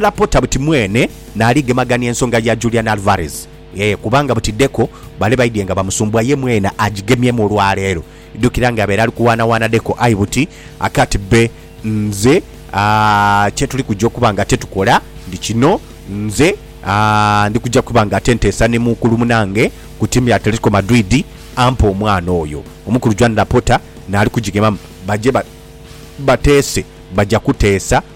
Laporta buti mwene naali gemagania ensonga ya Julian Alvarez ee kubanga buti Deco bale baidhie nga bamusumbua ye mwene agigemyemu olwaleero. Idhukira nga abeera ali kuwaanawaana Deco aye buti akati bbe nze aa kye tuli kuja okuba nga ate tukola ndi kino nze aa ndi kuja kuba nga ate nteesa ni muukulu munange ku tiimu ya Atletico Madrid ampe omwana oyo. Omukulu Juan Laporta naali kugigemamu baje ba bateese baja kuteesa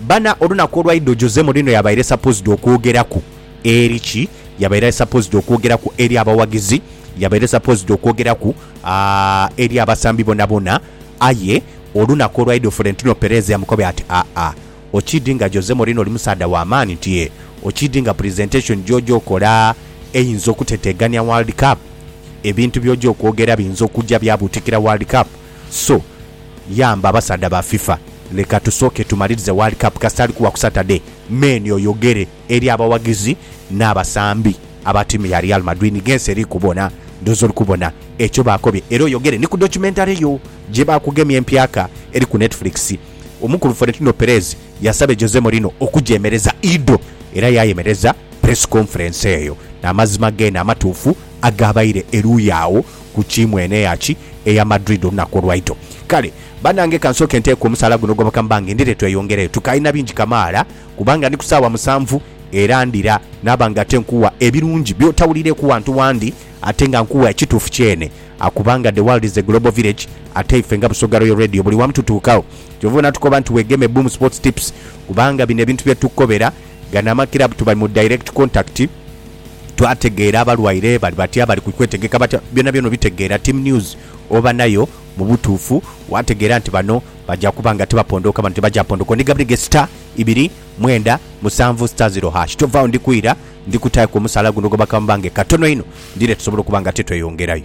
Bana olunaku olwaidho Jose Mourinho yabaire supposed okwogeraku eri ki? Yabaire supposed okwogeraku eri abawagizi, yabaire supposed okwogeraku aah eri abasambi bonabona aye olunaku olwaidho Florentino Perez yamukobea ati aah okid nga Jose Mourinho oli musaadha wamaani nti eeh okid nga presentation gyoja okola eyinza okutetegania world cup ebintu byoja okwogera biyinza okuja byabutikira world cup so Yamba abasaadha ba FIFA ni katusooke tumalirize World Cup kasita ali kuwa ku Saturday men oyogere eri abawagizi n'abasambi aba tiimu ya Real Madrid ni g'ensi eri kubona. Ndhooza oli kubona ekyo baakobye era oyogere ni ku documentary yo gye baakugemye empyaka eri ku Netflix. Omukulu Florentino Perez yasabye Jose Mourinho okugyemereza Ido era yaayemereza press conference eyo n'amazima geene amatuufu agaabaire eruuyi agho. ku kiimu eno eya ki? Eya Madrid olunaku olwaito. Kale, banange ka nsooke nteeke omusaala guno ogoboka mba ng'endhire tweyongereyo. Tukaalina bingi kamaala kubanga ndi ku saawa musanvu era ndira naaba nga ate nkuwa ebirungi by'otawulireeku wantu wandi ate nga nkuwa ekituufu kyene kubanga the world is a global village ate ife nga Busoga Royal Radio buli wamu tutuukagho. Kyova obona tukoba nti weegeme Boom Sports Tips kubanga bino ebintu bye tukukobera Gano amakirabu tubali mu direct contact, twategeera abalwaire bali batya, bali ku kwetegeka batya, byonabyona obitegeera. Team news oba nayo mu butuufu waategeera nti bano baja kuba nga tibapondooka, bano tibaja pondoka. Ondigabireghe star ibiri mwenda musanvu star zero hash. Tovaawo ndi kwira, ndi kutaaku omusaala guno ogwa bakaama bange katono inho, ndidha tusobole okuba nga titweyongerayo.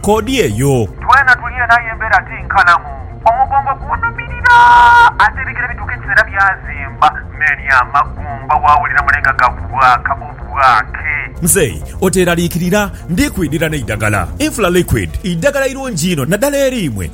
koodi eyo. Twena tuli eno aye embeera ti nkalamu. Omugongo gunhumirira ate ebigere bituuka ekiseera byazimba n'eri amagumba waawulira mule nga gabwaaka obwaake. Mzei oteeraliikirira, ndi kwidhira n'eidagala. Infla Liquid idagala irungi inho naddala eri imwe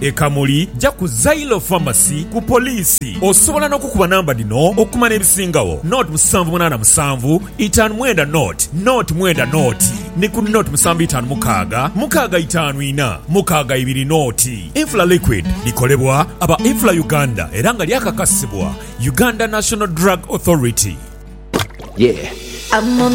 e Kamuli, ja ku Zailo Pharmacy ku poliisi. Osobola n'okukuba namba dhino okumanya ebisingagho, nought musanvu munaana musanvu itaanu mwenda nought nought mwenda nought ni ku nought musanvu itaanu mukaaga mukaaga itaanu ina mukaaga ibiri nought. Infla Liquid likolebwa aba Infla Uganda era nga lyakakasibwa Uganda National Drug Authority. Yeah.